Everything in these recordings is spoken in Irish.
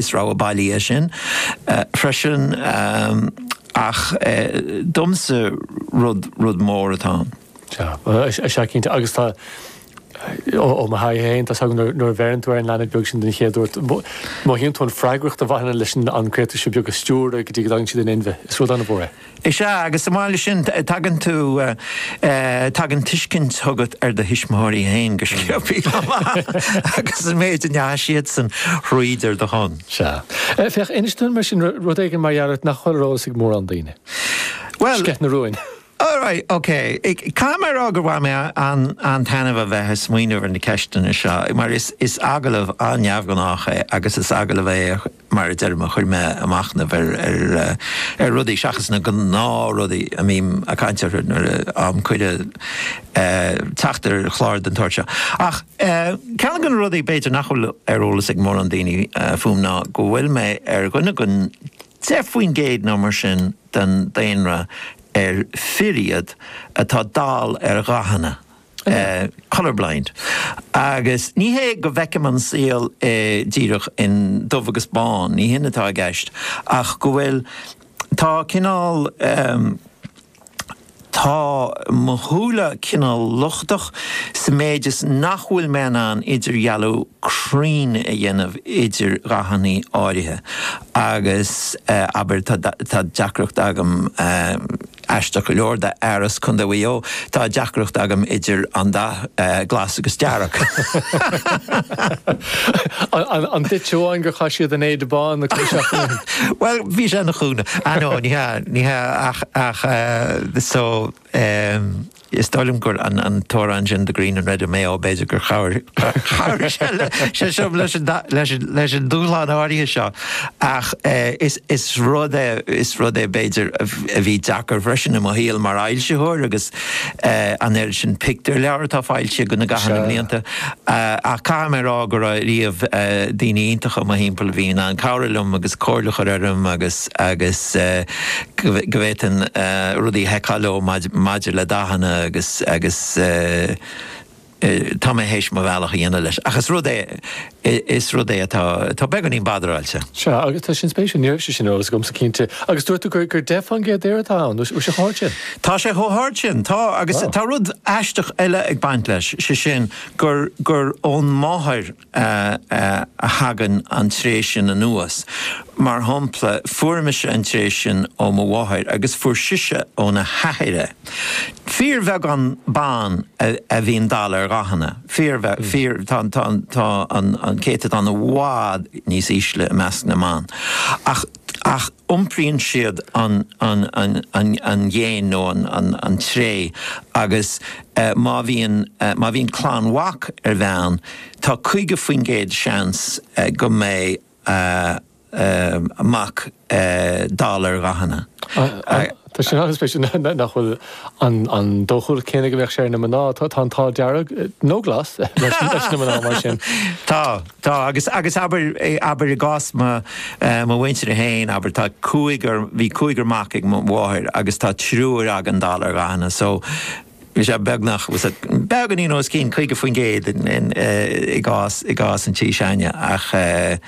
Is rogha bailí é sin freisin ach domsa rud mór atá ann. Sea, sea cinnte agus tá, ó mo thaithí féin, tá a fhios agat nuair a bheireann tú ar an leanbh beag sin den chéad uair, mothaíonn tú an freagracht a bhaineann leis an gcréatúr seo beag a stiúradh go dtí go dtagann siad in inmhe, is rud an-mhór é. Is ea, agus ag an am céanna sin, tagann tú, tagann tuiscint chugat ar do thuismitheoirí féin go sciobtha chomh maith agus an méid a ndeachaigh siadsan thríd ar do shon. Sea. Féach, inis dúinn mar sin rud éigin mar gheall ort nach bhfuil ar eolas ag mórán daoine. Bhuel. Sceith na rúin. Alright, ok. Caithfidh mé a rá gur bhain mé an-taitneamh a bheith ag smaoineamh ar na ceisteanna seo, mar is agallamh an-neamhghnách é agus is agallamh é mar a deirim, a chuir mé a' machnamh ar rudaí seachas na gnáthrudaí a mbím a' caint orthu nuair a fhaighim cuireadh teacht ar chlár den tsórt seo. Ach ceann de na rudaí b'fhéidir nach bhfuil ar eolas ag mórán daoine fúm ná go bhfuil mé ar dhuine den 10% nó mar sin den daonra ar fir iad atá dall ar dhathanna. colour blind, agus ní hé go bhfeicim an saol díreach in dubh agus bán, ní hin atá i gceist, ach go bhfuil, tá cineál, tá mo shúile cineál lochtach sa méid is nach bhfuil mé in ann idirdhealú cruinn a dhéanamh idir dhathanna áirithe agus, abair, tá deacracht agam. Aisteach go leor, d'fhear as Contae Mhaigh Eo, tá deacracht agam idir an dath glas agus dearg. An duitse amháin gur chaith siad an éide bhán? Bhuel, bhí sé ina chúnamh. Á, no, ní hea, ní hea, ach, ach, eh, so, em, Is dóigh liom gur an t-amhrán sin 'The Green and Red' of Mayo, b'fhéidir gur chabhraigh sé liom leis an dúshlán áirithe seo, ach is rud é, is rud é, b'fhéidir, a bhí deacair freisin i mo shaol mar fhoilsitheoir agus an oiread sin pictiúrleabhar atá foilsithe againn i gcaitheamh na mblianta, ach caithfidh mé a rá go raibh riamh daoine iontacha i mo thimpeall a bhí in ann cabhrú liom agus comhairle a chur orm agus. agus go bhféadfainn rudaí a sheiceáil leo maidir le dathanna agus, agus tá mé théis mo bhealach a dhéanamh leis, ach is rud é, is rud é atá, atá beagáinín badaráilte. Sea, agus tá sin spéisiúil, ní raibh sé sin ar eolas agamsa cinnte. Agus dúirt tú gur, gur deich faoin gcéad d'fhir atá ann, bhfuil sé chomh hard sin? Tá sé chomh hard sin, tá, agus tá rud aisteach eile ag baint leis, sé sin gur, gur ón máthair a thagann an tréith sin anuas. Mar shampla, fuair mise an tréith sin ó mo mháthair agus fuair sise óna hathair é. Fíorbheagán ban a bhíonn dall ar dhathanna, tá an céatadán i bhfad níos ísle i measc na mban. iompraíonn siad an an ghéin nó an tréith agus má bhíonn, má bhíonn clann mhac ag bean, tá 50% seans go mbeidh mac dall ar dhathanna. Tá sin an-spéisiúil, nach bhfuil an dóchúlacht céanna go mbeadh sé ar na mná. Tá an t-ádh dearg, nó glas, leis na mná mar sin. Tá, tá. Agus, agus abair, abair i gcás mo, eh, mo mhuintire féin, abair, tá cúigear, bhí cúigear mac ag mo mháthair agus tá triúr againn dall ar dhathanna, so, Bhí sé beagnach, bhí sé beagáinín os cionn 50% in, in, eh, i gcás, i gcás an tí s'againne ach eh,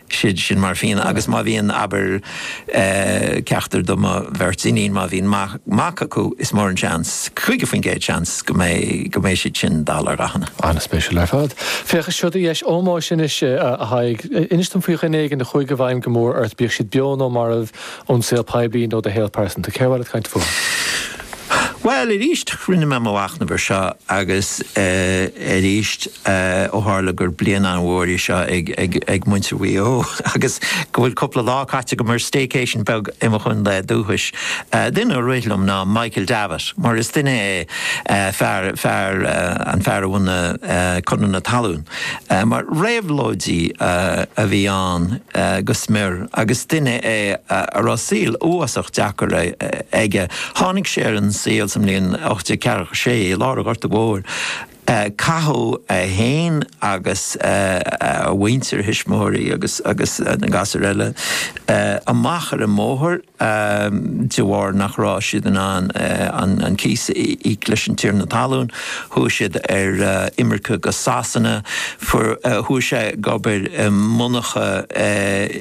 sin, sin mar a bhíonn agus má bhíonn abair eh, ceachtar de mo bheirt iníon, má bhíonn mac, mac acu is mór an seans, 50% seans go mbeidh, go mbeidh siad sin dall ar dhathanna. An-spéisiúil ar fad. Féach, seo do dheis ómóis anois, eh, a Thaidhg. Eh, Inis dom faoi dhuine éigin a chuaigh i bhfeidhm go mór ort, bíodh siad beo nó marbh, Ón saol poiblí nó do shaol pearsanta? Cé a bhfuil tú ag caint fúthu? Bhuel, arís, rinne mé mo mhachnamh ar seo agus arís ó tharla gur bliain an-mhór í seo ag muintir Mhaigh Eo agus go bhfuil cúpla lá caite agam ar staycation beag i mo chontae dúchais, duine a rith liom ná Michael Davitt, mar is duine é, fear, fear, an fear a bhunaigh Conradh na Talún. Mar réabhlóidí a bhí ann go smior, agus duine é a raibh saol uafásach deacair aige. Tháinig sé ar an saol sa mbliain 1846 i lár an Ghorta Mhóir. Caitheadh é féin agus a mhuintir, a thuismitheoirí agus na gasúir eile, amach ar an mbóthar. de bharr nach raibh siad in ann an cíos a íoc leis an tiarna talún, chuaigh siad ar imirce go Sasana, chuaigh sé ag obair i monarcha i.